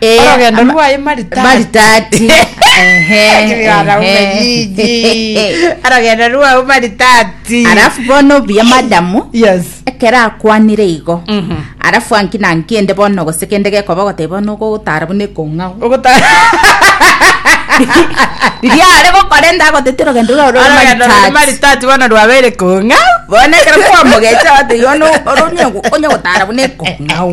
Eh, Orogendo ama- rwaye maritati. maritati Ehe, Kigana ehe. umenyinyi. Orogendo rwao maritati. alafu bono buya madamu Yes. ekero akwanire igo Mhm. alafu anki nanki ende bono gose kende gekoba goteba bono gogotara buna ekong'ao Ogota- riria are gokora ende agotete orogendo rwao rore Orogendo rwa maritati maritati bono rwabeire kong'ao. bono ekero kwamogecha ate yono onye gotara buna ekong'ao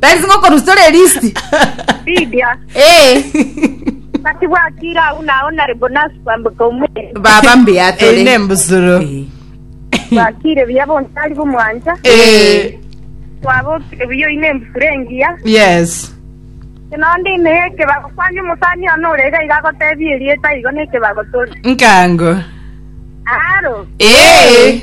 Tari ngokorusora elisti. Lydia, Eh, naki bwakire agwo nao nare bonasi kwamboka omwere. baba mbuya tore. Eine mbusuro. Eh, Bwakire buya bontari bomwancha. Eh, Twabokire buya oine embusuro engiya. Yes. Nonde imehe ekebago kwani omosani ono orega iga agotebia erieta igo nekebago tore. Nkango. Aro. eh.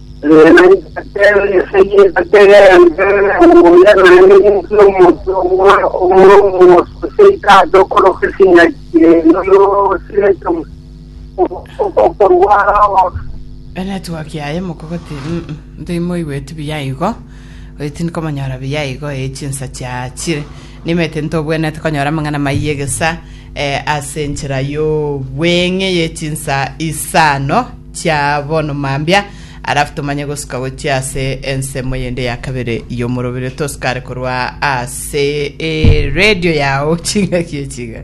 Enetwork yaye mokogoti mm timoigweti buya igo oyo tindi komonyora buya igo ee chinsa chiachire nimanyete ntobwenete konyora amang'ana maiyo egesa ase enchera yobweng'e ye chinsa isano Chia bono mambia, arafu tomanye gosuka gochia ase ensemo yende ya kabere y'omoroberio tosukare korwa ase eredio yao chingaki echiga.